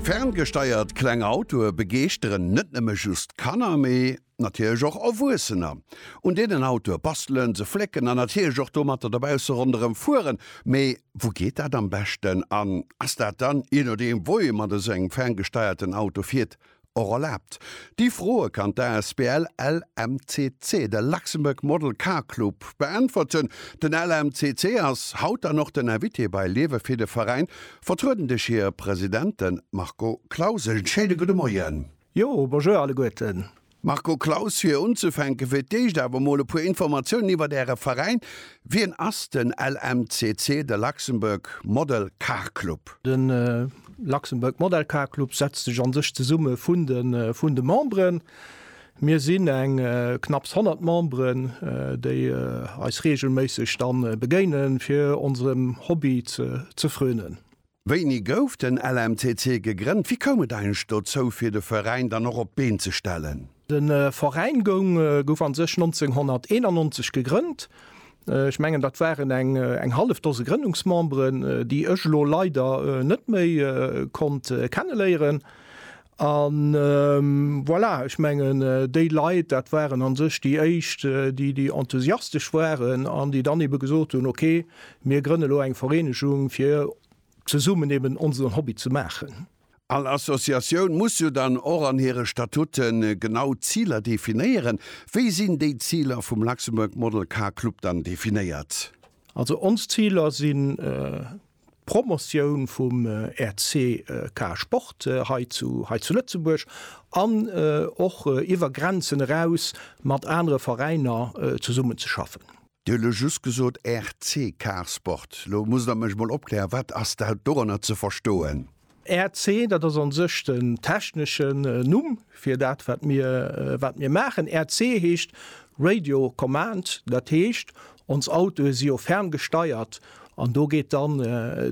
Ferngesteiert kleng Autoe begeeschteren net nëmme just Kanner, mee natierlech och Erwuessener. Un deenen Autoe bastelen, se flécken an natierlech och domatter dobausse ronderëm fueren. Mee wou geet dat am beschten? An ass dat dann, jee nodeem wou ee mat esou engem ferngesteierten Auto fiert, Och erlaabt. Déi Froe kann d'Asbl LMCC, de Luxembourg Model Car Club, beäntwerten. Den LMCC ass haut dann och den Invité bei Liewe fir de Veräin, vertrueden duerch hire President, de Marco Claus. E schéine gudde Moien. Jo, bonjour alleguerten. Marco Claus, fir unzufänke fir d'éischt awer emol e puer Informatiounen iwwert Äre Veräin. Wien ass den LMCC, de Luxembourg Model Car Club? Den Luxembourg Model Car Club setzt sech an sech zesumme vun de vun de Memberen. Mir sinn eng knapps 100 Memberen, déi eis reegelméisseg dann begéinen, fir onsem Hobby ze ze frönen. Wéini gouf den LMCC gegrënnt? Wéi koum et eigentlech dozou, fir de Veräin dann och op d'Been ze stellen? De Veräin goung gouf a sech 1991 gegrënnt. Ech mengen, dat waren eng eng hallef Dose Grënnungsmemberen, déi ech elo leider net méi konnt kenneléieren. An voilà, ech mengen, déi Leit, dat waren a sech déi éischt, déi déi enthusiastesch waren an déi dann eebe gesot hunn, ok, mir grënne lo eng Vereenegung, fir zesummen eeben onsen Hobby ze maachen. All Associatioun muss jo dann och an hire Statuten genau d'Ziler definéieren. Wéi sinn déi Ziler vum Luxembourg Model Car Club dann definéiert? Also ons Ziler sinn d'Promotioun vum RCK-Sport hei zu Lëtzebuerg an och iwwer Grenzen eraus mat anere Veräiner zesummenzeschaffen. Dir hutt elo just gesot RC Carsport. Elo musst Der mech mol opklären, wat ass da doranner ze verstoen? RC, dat ass an sech den techneschen Numm fir dat, wat mir, wat mir maachen. RC heescht Radio Command, dat heescht, ons Autoe si jo ferngesteiert an do geet dann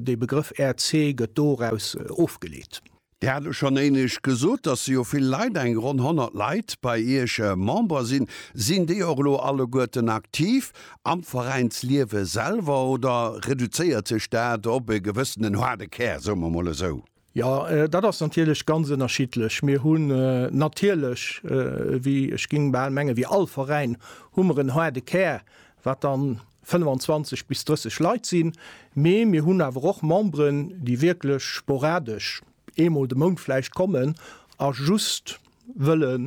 dee Begrëff RC gëtt doraus ofgeleet. Dir hat elo schonn éinescht gesot, dass jo vill Leit, eng ronn 100 Leit, bei Iech Member sinn. Sinn déi och elo alleguerten aktiv am Veräinsliewe selwer oder reduzéiert sech dat op e gewëssenen haarde Kär, soe mer mol esou? Jo, dat ass natierlech ganz ënnerschiddlech. Mir hunn natierlech, wéi, ech géing bal mengen, wéi all Veräin hu mer en haarde Kär, wat dann 25 bis 30 Leit sinn, mee mir hunn awer och Memberen, déi wierklech sporadesch eemol de Mount vläicht kommen a just wëlle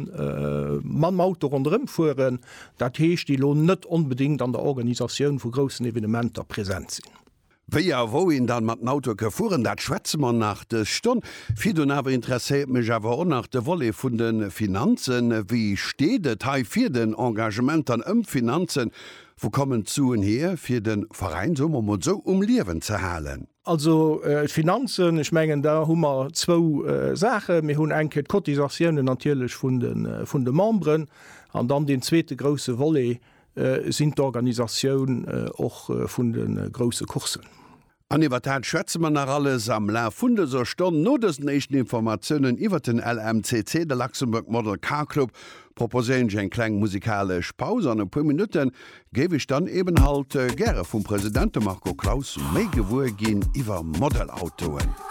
mam Auto ronderëm fueren, dat heescht, déi elo net onbedéngt an der Organisatioun vu groussen Evenementer present sinn. Wéi a wou een dann mat den Autoe ke fueren, dat schwätze mer nach dës Stonn. Virdun awer interesséiert mech awer och nach de Volet vun de Finanzen. Wéi steet et hei fir den Engagement dann ëm d'Finanzen? Wou kommen d'Suen hier fir den Veräin, soe mer mol sou, um Liewen ze halen? Also d'Finanzen, ech mengen da hu mer zwou Saachen. Mir hunn eng Kéier d'Cotisatiounen natierlech vun de Memberen an dann deen zweete grousse Volet, Sinn d'Organisatioun och vun de grousse Courssen. An iwwer dat schwätze mer nach alles am Laf vun dëser Stonn. No dësen éischten Informatiounen iwwer den LMCC, de Luxembourg Model Car Club, proposéieren ech eng kleng musikalesch Paus. An e puer Minutte géif ech dann eben halt gäre vum President, dem Marco Claus, méi gewuer ginn iwwer Modelautoen.